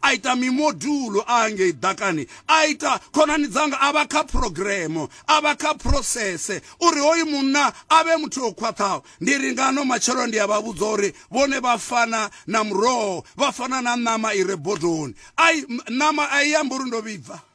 a ita mimodulo a ngei ḓakani a ita khonani dzanga a vha kha phurogiremo a vha kha phurosese uri hoyu munna a vhe muthu o khwaṱhaho ndi ri ngano matshelo ndi a vha vhudza uri vhone vha fana na muroho vha fana na ṋama i re bodoni ai ṋama a i amba uri ndo vhibva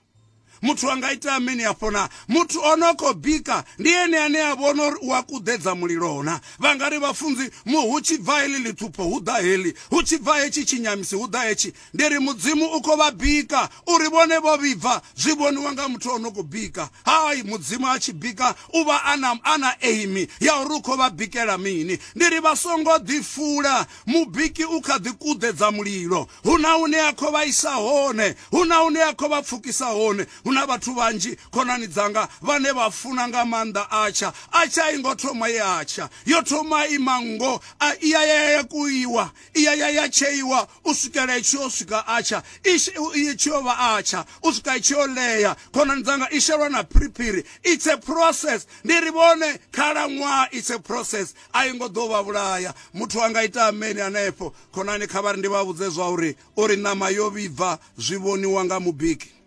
muthu a nga ita mini hafho na muthu o no khou bika ndi ene ane a vhona uri u a kuḓedza mulilo na vha nga ri vhafunzi mu hu tshi bva heḽi ḽithupho hu ḓa heḽi hu tshi bva hetshi tshinyamisi hu ḓa hetshi ndi ri mudzimu u khou vha bika uri vhone vho vhibva zwi vhoniwa nga muthu o no khou bika hai mudzimu a tshi bika u vha a na a na aimi ya uri u khou vha bikela mini ndi ri vha songo ḓifula Mubiki u kha ḓi kuḓedza mulilo. Hu na hune a khou vha isa hone, hu na hune a khou vha pfukisa hone. Hu na vhathu vhanzhi, khonani dzanga, vhane vha funa nga maanḓa Atsha. Atsha i ngo thoma ye a tsha. Yo thoma i manngo, a i ya ya ya kuiwa, i ya ya ya tsheiwa u swikela i tshi yo swika Atsha, i tshi yo vha Atsha, u swika i tshi yo ḽea. Khonani dzanga, i shelwa na phiriphiri. It's a process. Ndi ri vhone, khalaṅwaha, it's a process. a i ngo ḓo vha vhulaya. Muthu a nga ita ameni hanefho. Khonani, kha vha ri ndi vha vhudze zwa uri, uri ṋama yo vhibva zwi vhoniwa nga mubiki.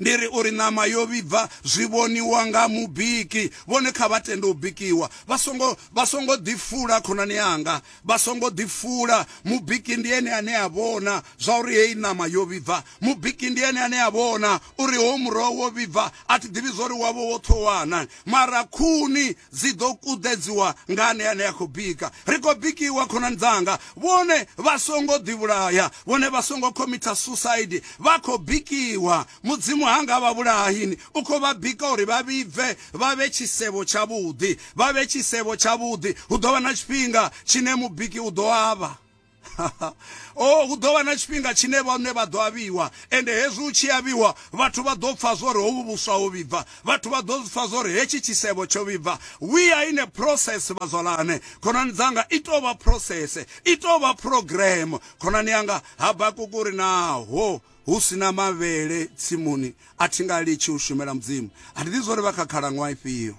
Ndi ri uri ṋama yo vhibva zwi vhoniwa nga mubiki. Vhone kha vha tende u bikiwa. Vha songo vha songo ḓifula khonani yanga. Vha songo ḓifula. Mubiki ndi ene ane a vhona zwa uri heyi ṋama yo vhibva. Mubiki ndi ene ane a vhona uri ho muroho wo vhibva. A thi ḓivhi zwa uri wavho wo ṱhowana. Mara khuni Dzi ḓo kuḓedziwa nga ane ane a khou bika. Ri khou bikiwa, khonani dzanga. Vhone vha songo ḓivhulaya. Vhone vha songo khomitha susaidi. Vha khou bikiwa. Mudzimu ha nga vha vhulayi. U khou vha bika uri vha vhibve, vha vhe tshisevho tshavhuḓi. Vha vhe tshisevho tshavhuḓi. Hu ḓo vha na tshifhinga tshine mubiki u ḓo avha. o oh, hu ḓo vha na tshifhinga tshine vhone vha ḓo avhiwa ende hezwi u tshi avhiwa vhathu vha ḓo pfa zwori hovhu vhuswa ho vhibva vhathu vha ḓo pfa zwori hetshi tshisevho tsho vhibva we are in a process vhazwalane khonani dzanga i tou vha process i tou vha program khonani yanga habakukuri naho hu si na mavhele tsimuni a thi nga litshi u shumela mudzimu a thi ḓi zwori vha kha khalaṅwaha ifhio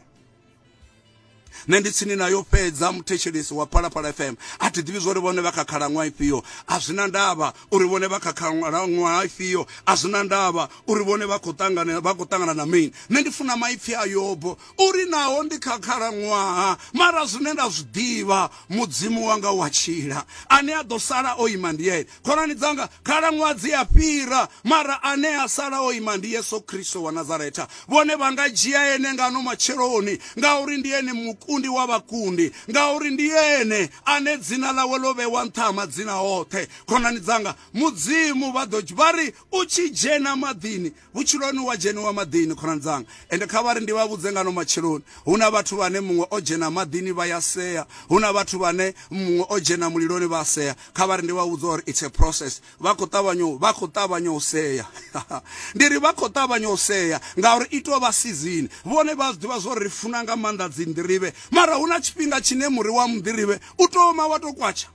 nṋe ndi tsini nayo fhedza muthetshelesi wa phalaphala fm a thi ḓivhi zwori vhone vha kha khalaṅwaha ifhio a zwi na ndavha uri vhone vha kha khalaṅwaha ifhio a zwi na ndavha uri vhone vha khou ṱangana vha khou ṱangana na mini nṋe ndi funa maipfi a yobo uri naho ndi kha khalaṅwaha mara zwine nda zwi ḓivha mudzimu wanga wa tshila ane a ḓo sala o ima ndi ene khonani dzanga khalaṅwaha dzi a fhira mara ane a sala o ima ndi yesu kristo wa nazaretha vhone vha nga dzhia ene ngano matsheloni ngauri ndi ene mukundi wa vhakundi ngauri ndi ene ane dzina ḽawe ḽo vhewa nṱha ha madzina oṱhe khonani dzanga mudzimu vha ḓo vha ri u tshi dzhena maḓini Vhutshiloni wa dzheniwa maḓini, khonani dzanga, ende kha vhari ndi vha vhudze ngano matsheloni, hu na vhathu vhane muṅwe o dzhena maḓini vha ya sea, hu na vhathu vhane muṅwe o dzhena muliloni vha sea, kha vhari ndi vha vhudze uri it's a process, vha khou ṱavhanya u, vha khou ṱavhanya u sea. Ndi ri vha khou ṱavhanya u sea ngauri i tou vha sizini. Vhone vha a zwi ḓivha zwa uri ri funa nga maanḓa dzinḓirivhe, mara hu na tshifhinga tshine muri wa munḓirivhe u tou oma wa tou kwatsha.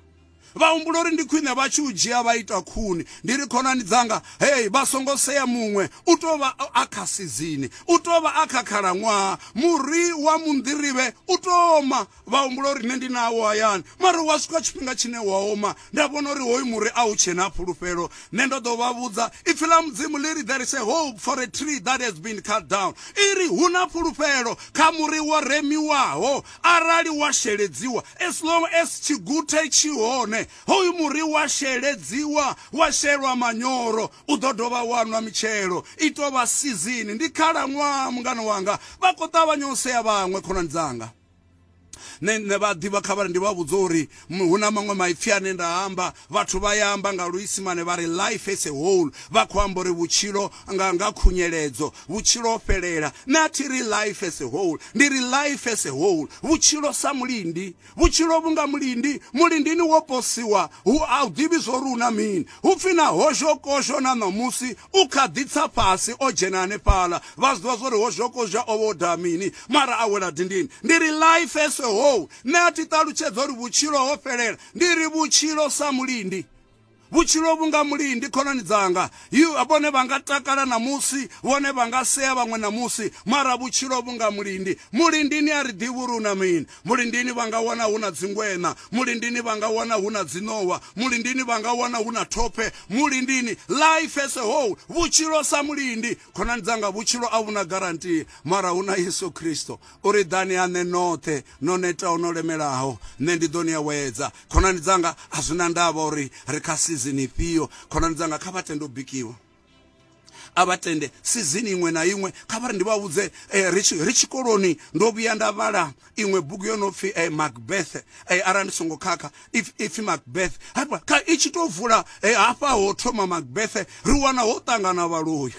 Vha humbula uri ndi khwine vha tshi u dzhia vha ita khuni. Ndi ri, Khonani dzanga, hei, vha songo sea muṅwe. U tou vha a kha sizini. U tou vha a kha khalaṅwaha. Muri wa munḓirivhe u tou oma. Vha humbula uri nṋe ndi nawo hayani. Mara hu a swika tshifhinga tshine wa oma. Nda vhona uri hoyu muri a u tshe na fhulufhelo. Nṋe ndo ḓo vha vhudza, Ipfi ḽa Mudzimu ḽi ri, There is a hope for a tree that has been cut down. I ri, Hu na fhulufhelo kha muri wo remiwaho. arali wa sheledziwa as long as tshiguthe tshi hone hoyu muri wa sheledziwa wa shelwa manyoro u ḓo dovha wa nwa mitshelo i tou vha sizini ndi khalaṅwaha mungana wanga vha khou ṱavhanya u sea vhaṅwe khonani dzanga nṋe nṋe vha ḓivha kha vhari ndi vha vhudza uri Hu na maṅwe maipfi ane nda a amba, vhathu vha ya amba nga Luisimane vha ri life as a whole, vha khou amba uri vhutshilo nga nga khunyeledzo, vhutshilo ho fhelela. Nṋe a thi ri life as a whole, ndi ri life as a whole, vhutshilo sa mulindi. Vhutshilo vhu nga mulindi, mulindini wo posiwa, hu, a u ḓivhi zwo ri hu na mini. Hu pfi na hozhokozho na ṋamusi u kha ḓi tsa fhasi o dzhena hanefhaḽa, vha zwi ḓivha zwo ri hozhokozho o vha o daha mini, mara a wela dindini. Ndi ri life as a whole, Nṋe a thi ṱalutshedza uri vhutshilo ho fhelela, ndi ri vhutshilo sa mulindi. Vhutshilo vhunga mulindi khonani dzanga, vhone vha nga takala ṋamusi, vhone vha nga sea vhaṅwe ṋamusi, mara vhutshilo vhunga mulindi. Mulindini a ri ḓivhi uri hu na mini. Mulindini vha nga wana hu na dzingweṋa, mulindini vha nga wana hu na dziṋowa, mulindini vha nga wana hu na thophe, mulindini. Life as a whole, vhutshilo sa mulindi. Khonani dzanga, vhutshilo a vhu na guarantee, mara hu na Yesu Kristo. U ri, Ḓani ha nṋe noṱhe no netaho no lemelaho, nṋe ndi ḓo ni awedza. Khonani dzanga, a zwi na ndavha uri ri kha sizini ifhio, khonani dzanga, kha vha tende u bikiwa. A vha tende sizini iṅwe na iṅwe. Kha vha ri ndi vha vhudze, eh, ri tshi ri tshikoloni ndo vhuya nda vhala iṅwe bugu yo no pfi eh, Macbeth, eh, arali ndi songo khakha. ipfi macbeth hafha kha i tshi tou vula eh, hafha ho thoma macbeth ri wana ho ṱangana vhaloyi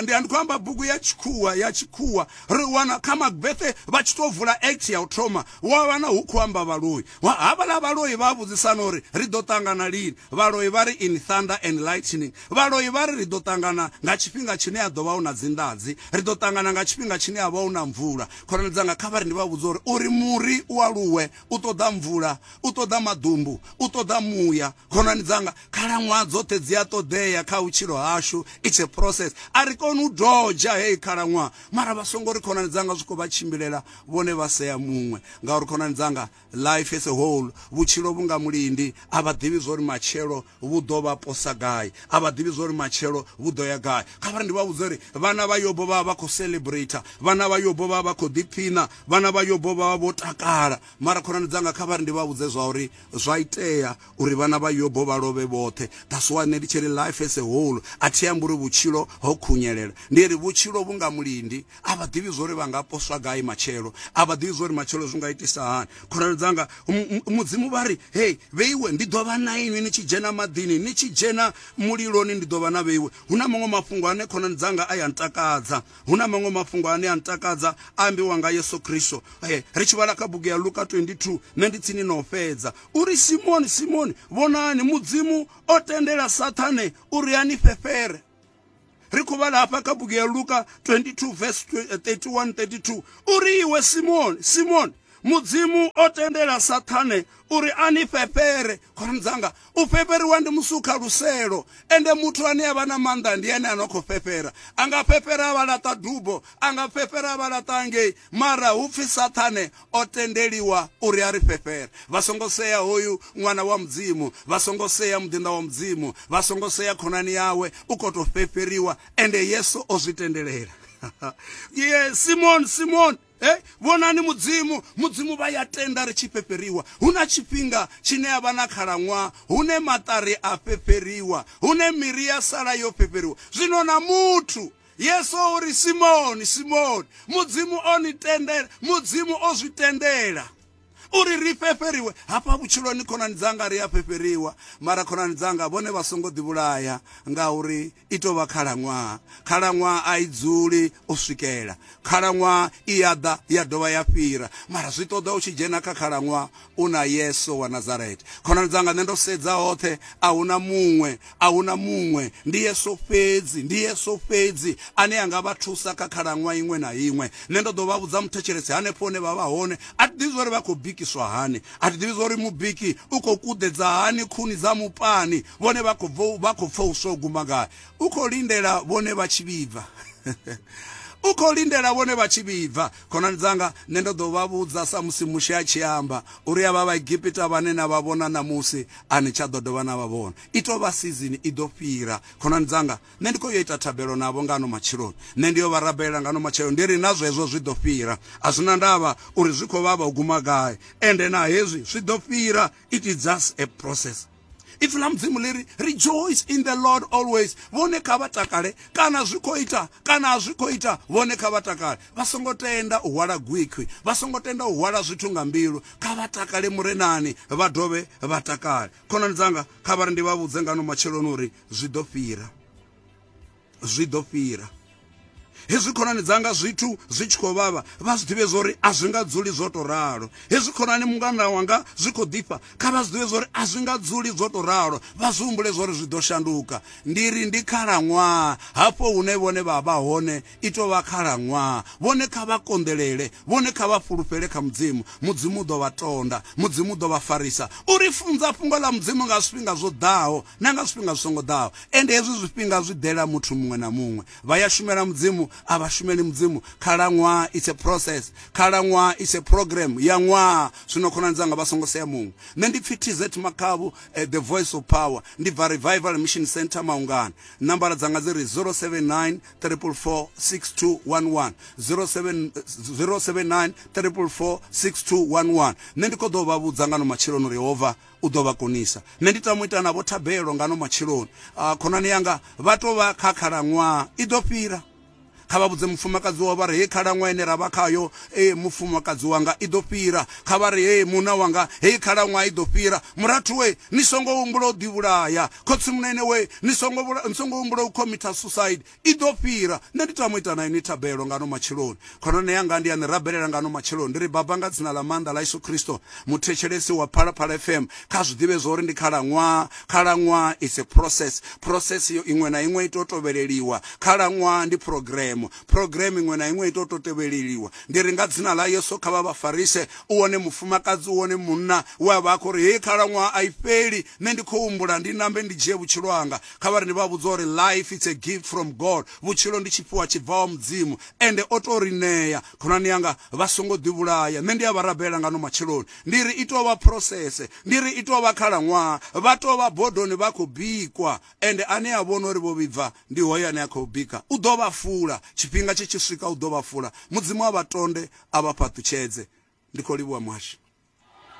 ndi ndi khou amba bugu ya tshikhuwa ya tshikhuwa ri wana kha macbeth vha tshi tou vula act ya u thoma wa wana hu khou amba vhaloyi havhaḽa vhaloyi vha vhudzisana uri ri ḓo ṱangana lini vhaloyi vha ri in thunder and lightning vhaloyi vha ri ri ḓo ṱangana nga tshifhinga tshine ya ḓo vha hu na dzinḓadzi ri ḓo ṱangana nga tshifhinga tshine ya vha hu na mvula khonani dzanga kha vha ri ndi vha vhudza uri uri muri u aluwe u ṱoḓa mvula u ṱoḓa maḓumbu u ṱoḓa muya khonani dzanga khalaṅwaha dzoṱhe dzi a ṱoḓea kha vhutshilo hashu its a process a ri koni u doja heyi khalaṅwaha mara vha songo ri khonani dzanga zwi khou vha tshimbilela vhone vha sea muṅwe ngauri khonani dzanga life as a whole vhutshilo vhu nga mulindi a vha ḓivhi zwo ri matshelo vhu ḓo vha posa gai? A vha ḓivhi zwa uri matshelo vhu ḓo ya gai. Kha vha ndi vha vhudze uri vhana vha Yobo vha vha vha khou celebrator, vhana vha Yobo vha vha vha khou ḓiphiṋa, vhana vha Yobo vha vha vho takala. Mara khonani dzanga, kha vha ri ndi vha vhudze zwa uri zwa itea uri vhana vha Yobo vha lovhe vhoṱhe. That's why nṋe ndi tshi ri life as a whole a thi ambi uri vhutshilo ho khunyelela, ndi ri vhutshilo vhu nga mulindi. a vha ḓivhi zwori vha nga poswa gai matshelo a vha ḓivhi zwori matshelo zwi nga itisa hani khonani dzanga mudzimu vha ri hei vheiwe ndi ḓo vha na inwi ni tshi dzhena maḓini ni tshi dzhena muliloni ndi ḓo vha na vheiwe hu na maṅwe mafhungo ane khonani dzanga a ya ntakadza hu na maṅwe mafhungo ane a ntakadza a ambiwa nga yesu kristo e ri tshi vhala kha bugu ya luka 22 nṋe ndi tsini no fhedza uri simoni simoni vhonani mudzimu o tendela sathane uri a ni fhefhere ri khou vhala hafha kha bugu ya luka 22 vs 31 32 uri iwe simoni simoni mudzimu o tendela sathane uri a ni fhefhere khonani dzanga u fhefheriwa ndi musukha luselo ende muthu ane a vha na maanḓa ndi ene a no khou fhefhera a nga fhefhera a vha laṱa dubo a nga fhefhera a vha laṱa ngei Mara hu pfi Saṱhane o tendeliwa uri a ri fhefhere. Vha songo sea hoyu Ṅwana wa Mudzimu, vha songo sea muḓinḓa wa Mudzimu, vha songo sea khonani yawe, u khou tou fhefheriwa, ende Yesu o zwi tendelela. Simoni, Simoni, hey, vhonani mudzimu mudzimu vha ya tenda ri tshi fhefheriwa hu na tshifhinga tshine a vha na khalaṅwaha hune maṱari a fhefheriwa hune miri ya sala yo fhefheriwa zwino na muthu Yesu o ri, Simoni, Simoni, Mudzimu o ni tendela, Mudzimu o zwi tendela uri ri fhefheriwe hafha vhutshiloni khonani dzanga ri a fhefheriwa mara khonani dzanga vhone vha songo ḓivhulaya ngauri i tou vha khalaṅwaha khalaṅwaha a i dzuli u swikela khalaṅwaha i ya ḓa ya dovha ya fhira mara zwi ṱoḓa u tshi dzhena kha khalaṅwaha u na yesu wa nazarete khonani dzanga nṋe ndo sedza hoṱhe a hu na muṅwe a hu na muṅwe ndi yesu fhedzi ndi yesu fhedzi ane a nga vha thusa kha khalaṅwa iṅwe na iṅwe nṋe ndo ḓo vha vhudza muthetshelesi hanefho hune vha vha hone a thi ḓivhi zwauri vha khou bikiswa hani a thi ḓivhi zwauri mubiki u khou kuḓedza hani khuni dza mupani vhone vha khou vha khou pfa u swo guma gai u khou lindela vhone vha tshi vhibva u khou lindela vhone vha tshi vhibva Khonani dzanga, nṋe ndo ḓo vha vhudza samusi Mushe a tshi amba, uri havha Vhaegipita vhane na vha vhona ṋamusi, a ni tsha ḓo dovha na vha vhona. I tou vha sizini i ḓo fhira. Khonani dzanga, nṋe ndi khou yo ita thabelo navho nga ano matsheloni. Nṋe ndi yo vha rabelela nga ano matshelo ndi ri, Na zwezwo zwi ḓo fhira. A zwi na ndavha uri zwi khou vhavha u guma gai, ende na hezwi zwi ḓo fhira. It is just a process. ipfi ḽa mudzimu ḽi ri rejoice in the lord always vhone kha vha takale kana zwi khou ita kana a zwi khou ita vhone kha vha takale vha songo tenda u hwala gwikhwi vha songo tenda u hwala zwithu nga mbilu kha vha takale murenani vha dovhe vha takale khonani dzanga kha vha ri ndi vha vhudze ngano matsheloni uri zwi ḓo fhira zwi ḓo fhira. Hezwi khonani dzanga zwithu zwi tshi khou vhavha vha zwi ḓivhe zwori a zwi nga dzuli zwo to ralo. Hezwi khonani mungana wanga zwi khou ḓifha kha vha zwi ḓivhe zwori a zwi nga dzuli zwo to ralo vha zwi humbule zwori zwi ḓo shanduka. Ndi ri ndi khalaṅwaha hafho hune vhone vha vha hone i tou vha khalaṅwaha. Vhone kha vha konḓelele, vhone kha vha fhulufhele kha Mudzimu. Mudzimu u ḓo vha tonda, Mudzimu u ḓo vha farisa. U ri funza fhungo ḽa Mudzimu nga zwifhinga zwo ḓaho na nga zwifhinga zwi songo ḓaho. ende hezwi zwifhinga zwi ḓela muthu muṅwe na muṅwe vha ya shumela mudzimu a vha shumeli mudzimu khalaṅwaha it's a process khalaṅwaha it's a program ya ṅwaha zwino khonani dzanga vha songo sea muṅwe nṋe ndi pfi tz makhavhu eh, the voice of power ndi bva revival mission center maungana nambara dzanga dzi ri 079 344 6211 079 344 6211 nṋe ndi khou ḓo vha vhudza nga no matsheloni uri yehova u ḓo vha konisa. Nṋe ndi tama u ita navho thabelo ngano matsheloni. Ah, khonani yanga, vha tou vha kha khalaṅwaha i ḓo fhira. Kha vha vhudze mufumakadzi wavho vha ri, hei khalaṅwaha ine ra vha khayo, ee, mufumakadzi wanga i ḓo fhira. Kha vha ri, hei munna wanga, hei khalaṅwaha i ḓo fhira. Murathu we, ni songo humbula u ḓivhulaya. Khotsimunene we, ni songo, ni songo humbula u khomitha suicide. I ḓo fhira. Nṋe ndi tama u ita na inwi thabelo ngano matsheloni. Khonani yanga ndi a ni rabelela ngano matsheloni. Ndi ri, Baba, nga Dzina ḽa Maanḓa ḽa Yesu Kristo, muthetshelesi wa Phalaphala FM kha zwi ḓivhe zwa uri ndi khalaṅwaha. Khalaṅwaha it's a process. Process yo iṅwe na iṅwe i tou tovheleliwa. Khalaṅwaha ndi phurogiremo. Phurogiremo iṅwe na iṅwe i tou tou tevheleliwa. Ndi ri, nga Dzina ḽa Yesu, kha vha vha farise. U wone mufumakadzi, u wone munna we a vha a khou ri, Heyi khalaṅwaha a i fheli. Nṋe ndi khou humbula ndi nambe ndi dzhie vhutshilo hanga. Kha vhari ni vha vhudze uri life it's a gift from God, vhutshilo ndi tshifhiwa tshi bvaho Mudzimu, ende o tou ri ṋea. Khonani yanga, vha songo ḓi vhulaya. Nṋe ndi a vha rabela nga ano matsheloni. Ndi ri i tou vha process. Ndi ri i tou vha khalaṅwaha. Vha tou vha bodoni vha khou bikwa. Ende ane a vhona uri vho vhibva, ndi hoyo ane a khou bika. U ḓo vha fula. Tshifhinga tshi tshi swika u ḓo vha fula. Mudzimu a vha tonde, a vha fhaṱutshedze. Ndi khou livhuwa Muhashi.